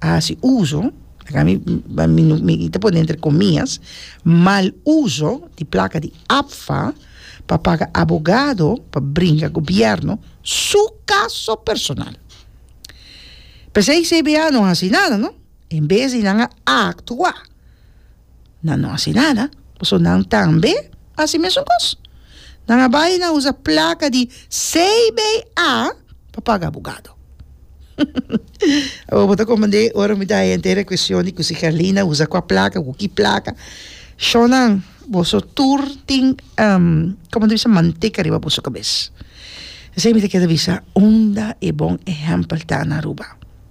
hasi uso, akí mi mi ta pone entre komias, mal uso di plaka di APFA pa paga abogado pa bringa gobièrnu su kaso personal. P'esei CBA no hasi nada, no. En bes di nan a aktua. nan no hasi nada, pasobra nan tambe a hasi mesun kos. Nan a bai nan usa plaka di CBA pa paga abogado. Awo bo ta komprendé ora mi ta henter e kueshon di ku si Herlin a usa kua plaka, ku ki plaka. Shownan, boso tur tin kòmò mi ta bisa manteka riba boso kabes. Esei mi ta kere bisa unda e bon ehèmpel ta na Aruba.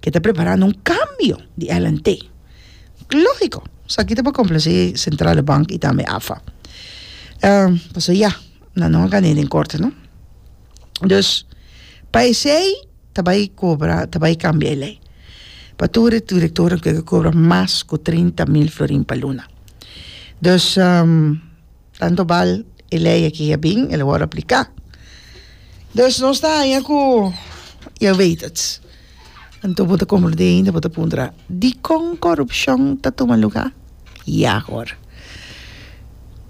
ke ta preparando un kambio di LNT. Lógiko, esaki ta pa komplase Sentrale Bank i tambe AFA. Pasobra ya, nan no a gané den korte, no? Dus, pa esei ta bai kobra, ta bai kambia e lei. Pa tur e direktornan ku e ke kobra mas ku trinta mil florin pa luna. Dus, Tanto bal e ley aki a bin, el a wòrdu apliká. Dus nos ta haña ku ya wet it. Anto bo ta konkludí ainda, bo ta puntra, Dikon korupshon ta tuma lugá? Ya awor.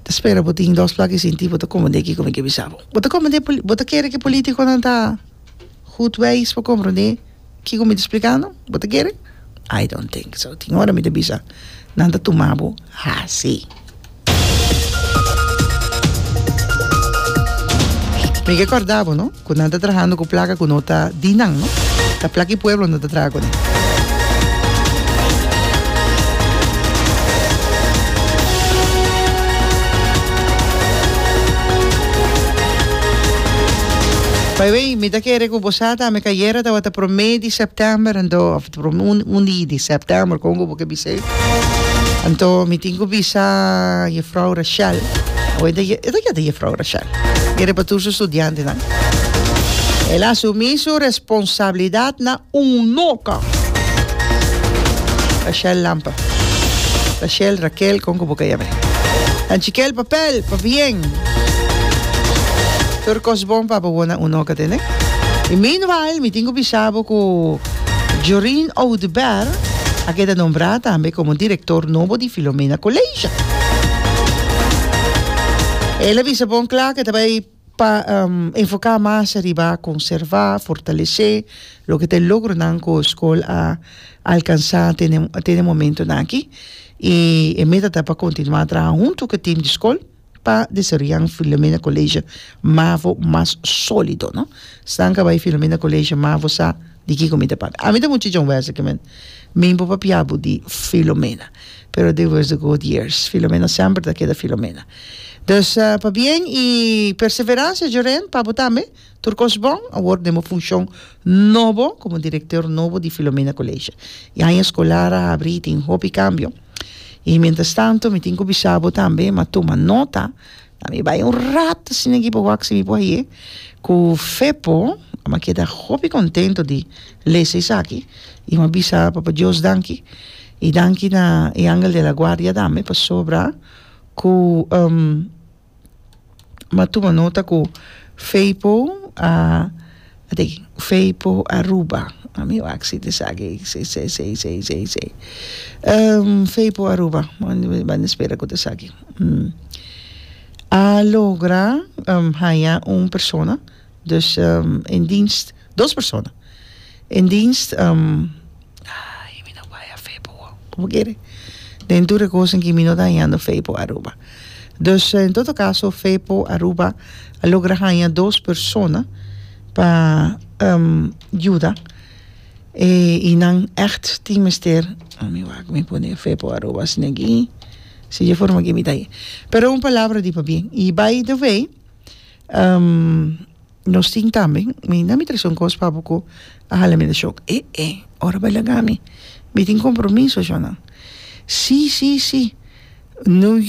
Ta spera bo tin dos plak i sinti bo ta komprendé kiko mi ke bisa bo. Bo ta komprendé, bo ta kere ke polítikonan ta hut weis pa komprendé Kiko mi ta splikando? Bo ta kere? I don't think so. Tin ora mi ta bisa, Nan ta tuma bo hasi. Mi ke kòrda bo no ku nan ta trahando ku plaka ku no ta di nan no. Ta plaka e pueblo nan ta traha kuné. By the way. Mi ta kere ku bosa ta me kayera tabata promé di sèptèmber anto òf un di di sèptèmber kon ku bo ke bis'é. Anto mi tin ku bisa Jefrou Rashel o e ta e ta yete Jefrou Rashel kere pa tur su studiantenan el asumí su responsabilidatnan. Un loca! Rachel Lampa Rachel, Raquel, con cu bo ka yam'e. Dan chiquel papel pa bien. Tur cos bon pa abawona un loca tene. Y meanwhile, mi tin cu bisa bo cu Joreen Oduber a keda nombra tambe como director nobo di Filomena College. Ela bisa bon cla cu ta bay. Pa enfoká mas riba konservá, fortalesé loke ta e logronan ku skol a alkansá te den momentunan aki i e meta ta pa kontinuá traha huntu ku e tim di skol pa desaroyá un Filomena Koleisje Mavo mas sólido. Snan ka bai Filomena Koleisje Mavo sa. di kiko mi ta papia ami ta muchacha un wèrseke men mi por papia bo di filomena pero despues di god years filomena semper ta keda filomena dus pabien i perseveransia jorèn pa bo tambe tur kos bon awor den bo funshon nobo komo direktor nobo di filomena koleshe i aña skolar a habri i tin hopi kambio i mientras tanto mi tin ku bisa bo tambe ma tuma nota A mi bai un rato sin e gibo wak si mi por haye cu fe po ama keda hopi contento di lesa esaki y ama bisa papa Dios danki y danki na e angel de la guardia tambe pasobra cu ama tuma nota cu fe po a Adekin, fei po Aruba. Ami wak si di saki fei po Aruba. Banda spera ku ta saki. A logra haya un persona, dus en dienst, dos persona en dienst. Ay, mi no bay a fe pa wou. Como kere? Den tur e kosen ki mi no ta hañando fe pa Aruba. Dus, en todo kaso, fe pa Aruba a logra haña dos persona pa yuda e i nan ègt tin mester, a mi wak mi pone e fe pa Aruba asina aki, si dje forma aki mi ta haña. Pero un palabra di pabien. I, by the way Nos tin tambe, mi na mi trese un kos pa bo ku a hala mi di shok, e e, ora bai laga mi, mi tin kompromiso, shona, si si si, nu.